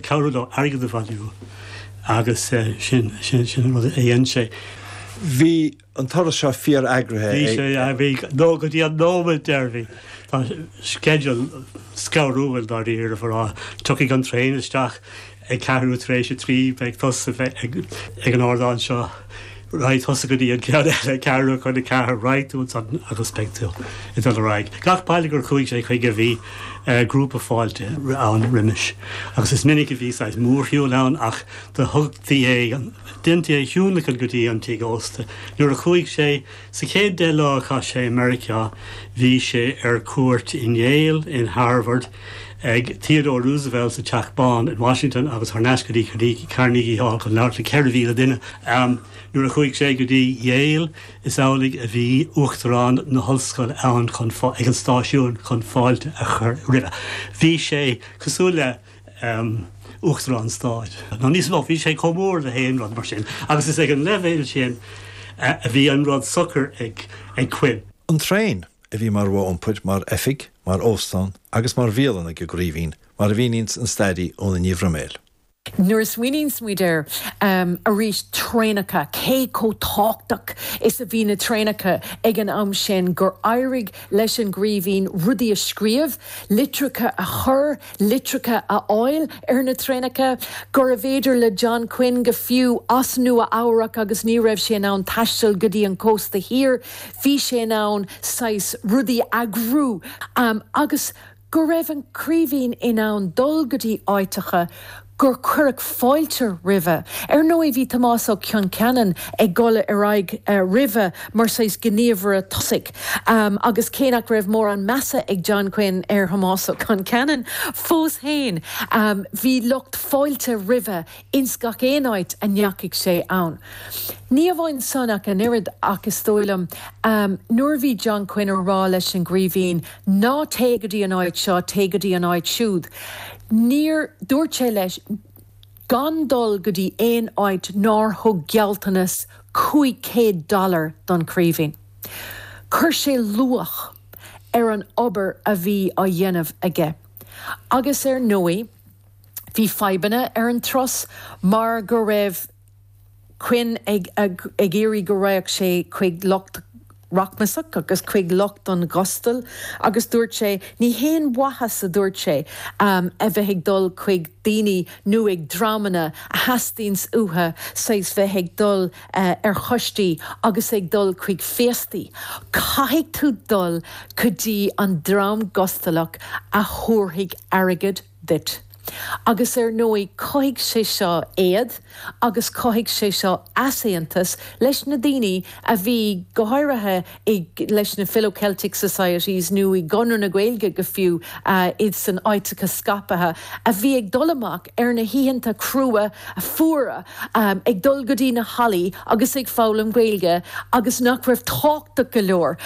cabhrú leo airgead a bhailiú agus sin an rud a dhein sé. Bhí an turas seo fíor eagraithe aige. Bhí sé, bhí, nó go dtí an nóiméad deireanaí. Tá sceideal scanrúil dáiríre a rá. Tiocfaidh an traein isteach ag ceathrú tar éis a trí, beidh tusa ag an ardán seo, Raghaidh tusa go dtí an ceann eile, ceathrú chun a ceathair, raghaidh tú ansan agus beidh tú ag dul ar aghaidh. Gach baile gur chuaigh sé chuige bhí grúpa fáilte ann roimhis, agus is minic a bhí saghas mórshiúil ann, ach do thugtaí é, deintaí é a thionlacan go dtí an tigh ósta. Nuair a chuaigh sé, sa chéad deich lá a chaith sé i Meiriceá, bhí sé ar cuairt in Yale, in Harvard, ag Theodore Roosevelt sa Teach Bán in Washington agus thar n-ais go dtí Carnegie Hall chun labhairt le 4,000 duine. Nuair a chuaigh sé go dtí Yale, is amhlaidh a bhí Uachtarán na hOllscoile ann chun ag an stáisiún chun fáilte a chur roimhe. Bhí sé cosúil le Uachtarán Stáit, nó níos mó, bhí sé chomh mór le haon rud mar sin agus is ag an leibhéal sin a bhí an rud socair ag Quinn. An traein, a bhí mar mhodh iompair, mar oifig, mar óstán agus mar bhialann ag an gCraoibhín, mar a mhíníonns an stairí Úna Ní Bhroiméil. Nuair a smaoiníonns muid air arís, traenacha, cé chomh tábhachtach is a bhí na traenacha ag an am sin gur éirigh leis an gCraoibhín rudaí a scríobh, litreacha a chur, litreacha a fháil ar na traenacha, gurbh fhéidir le John Quinn, go fiú as Nua-Eabhrac, agus ní raibh sé in ann taisteal go dtí an cósta thiar, bhí sé in ann saghas rudaí a eagrú, agus go raibh an Craoibhín in ann dul go dtí áiteacha, gur cuireadh fáilte roimhe. Ar ndóigh, bhí Tomás Ó Concheanainn ag dul ar aghaidh roimhe mar saghas gníomhaire tosaigh, agus cé nach raibh mórán measa ag John Quinn ar Thomás Ó Concheanainn fós féin, bhí lucht fáilte roimhe ins gach aon áit a ndeachaigh sé ann. Ní amháin san ach an oiread, ach is dóigh liom, nuair a bhí John Quinn ag rá leis an gCraoibhín, Ná téigh go dtí an áit seo, téigh go dtí an áit siúd. Níor dúirt sé leis gan dul go dtí aon áit nár thug gealltanas cúig céad dollar don Chraoibhín. Chuir sé luach ar an obair a bhí á dhéanamh aige. Agus ar ndóigh bhí fadhbanna ar an turas mar go raibh. Quinn ag iarraidh go raghadh sé chuig lucht rachmais agus chuig lucht an ghustail agus dúirt sé, 'Ní haon mhaitheas, a dúirt sé, 'a bheith ag dul chuig daoine nó chuig dreamanna a theastaíonns uathu saghas bheith ag dul ar choistí agus ag dul chuig féastaí. Caithfidh tú dul go dtí an dream gustalach a thabharfaidh airgead duit. Agus ar ndóigh chothaigh sé seo éad agus chothaigh sé seo easaontas leis na daoine a bhí, go háirithe leis na Philo-Celtic Societies nó i gConradh na Gaeilge go fiú, iad sna háiteacha scaipthe, a bhí ag dul amach ar na hoícheanta crua fuara, ag dul go dtí na hallaí agus ag foghlaim Gaeilge agus nach raibh tábhachtach go leor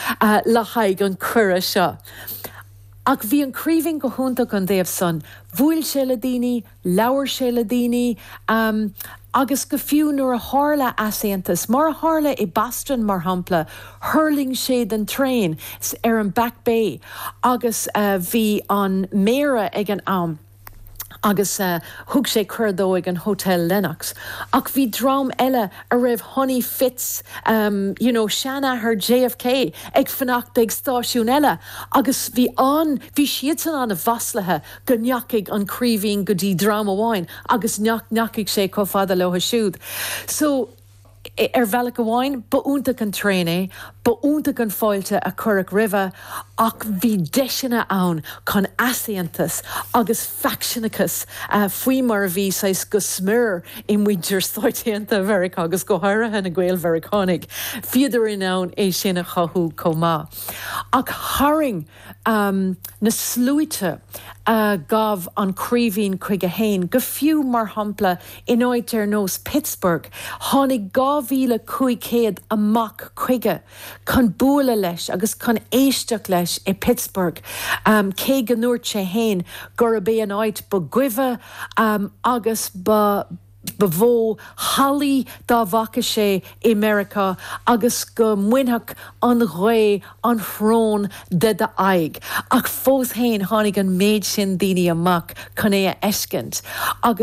le haghaidh an chuireadh seo. Ach bhí an Craoibhín go hiontach ón dtaobh san, bhuail sé le daoine, labhair sé le daoine, agus go fiú nuair a tharla easaontas, mar a tharla i Boston, mar shampla, thuirling sé den traein ar an Back Bay agus bhí an Méara ag an am, agus thug sé cuireadh dó ag an Hotel Lenox ach bhí dream eile a raibh Honey Fitz, you know, seanathair JFK, ag fanacht ag stáisiún eile agus bhí an, bhí siadsan an-mhaslaithe go ndeachaigh an Craoibhín go dtí dream amháin agus nach ndeachaigh sé chomh fada leo siúd. So. Ar bhealach amháin, ba iontach an traein é, ba iontach an fáilte a cuireadh roimhe, ach bhí deiseanna ann chun easaontas agus faicseanachas, faoi mar a bhí saghas go smior i muintir Stáit Aontaithe Mheiriceá agus go háirithe na Gael-Mheiriceánaigh, bhíodar in ann é sin a chothú chomh maith. Ach tharraing. na sluaite a ghabh an Craoibhín chuige féin, go fiú, mar shampla, in áit ar nós Pittsburgh, tháinig 2,500 amach chuige chun bualadh leis agus chun éisteacht leis i Pittsburgh, cé go ndúirt sé féin gurb é an áit ba dhuibhe agus ba ba mhó shalaí dá bhfaca sé i Meiriceá agus go mbainfeadh an ghaoth an shrón de d'aghaidh, ach fós féin tháinig an méid sin daoine amach chun é a fheiscint agus.